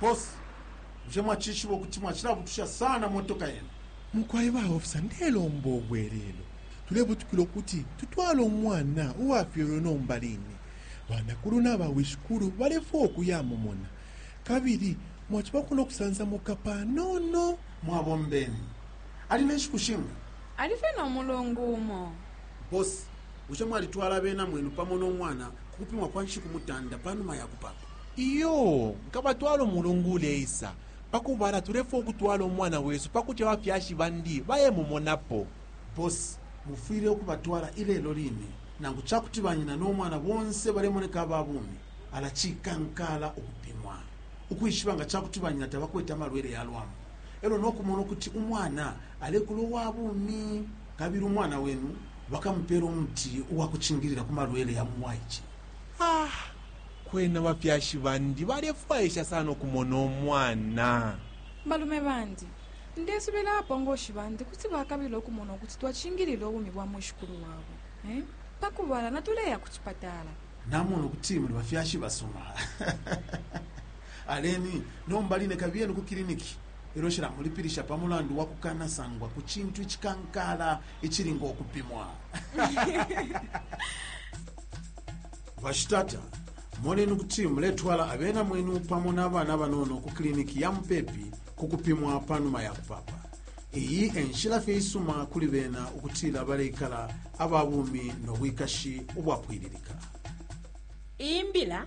bosi bushe mwacishiba ukuti mwacilabutusha sana motoka yenu mukwai ba ofisa ndelomba obwelelo tulebutukila ukuti tutwale umwana uwafyelwe nomba line banakulu n'abawishikulu balefwa okuyamumona kabili mwaciba kuno kusansamuka panono mwabombeni Ali ne nshiku shinga? Ali fye no mulungu umo. Boss, bushe mwalitwala abena mwenu pamo no mwana ku kupimwa kwa nshiku mutanda pa numa ya kupapa? Iyoo, nkabatwala umulungu uleisa. Pa kubala, tulefwaya ukutwala umwana wesu pa kuti abafyashi bandi bayemumonapo. Boss, mufwile ukubatwala ilelo line. Nangu ca kuti banyina no mwana bonse balemoneka aba bumi, ala cikankaala ukupimwa ukwishiba nga ca kuti banyina tabakwete amalwele ya lwambu. e lyo no kumona ukuti umwana alekula uwa bumi, kabili umwana wenu bakamupeela umuti uwa kucingilila ku malwele ya mu bwaice. Ah, kwena abafyashi bandi balefwaisha sana ukumona umwana. Balume bandi, ndesubila abapongoshi bandi kuti bakabila ukumona ukuti twacingilila ubumi bwa mwishikulu wabo. Eh? Pa kubala natuleya ku cipatala. Namona ukuti muli bafyashi basuma. Aleni nomba line kabiyeni ku kiliniki ilyo nshilamulipilisha pa mulandu wa kukanasangwa ku cintu icikankaala icili ngo kupimwa. Bashitata, moneni ukuti muletwala abena mwenu pamo na bana banono ku kiliniki ya mupepi ku kupimwa pa numa ya kupapa. Iyi e nshila fye isuma kuli bena ukutila baleikala aba bumi no bwikashi ubwapwililika. Iyi mbila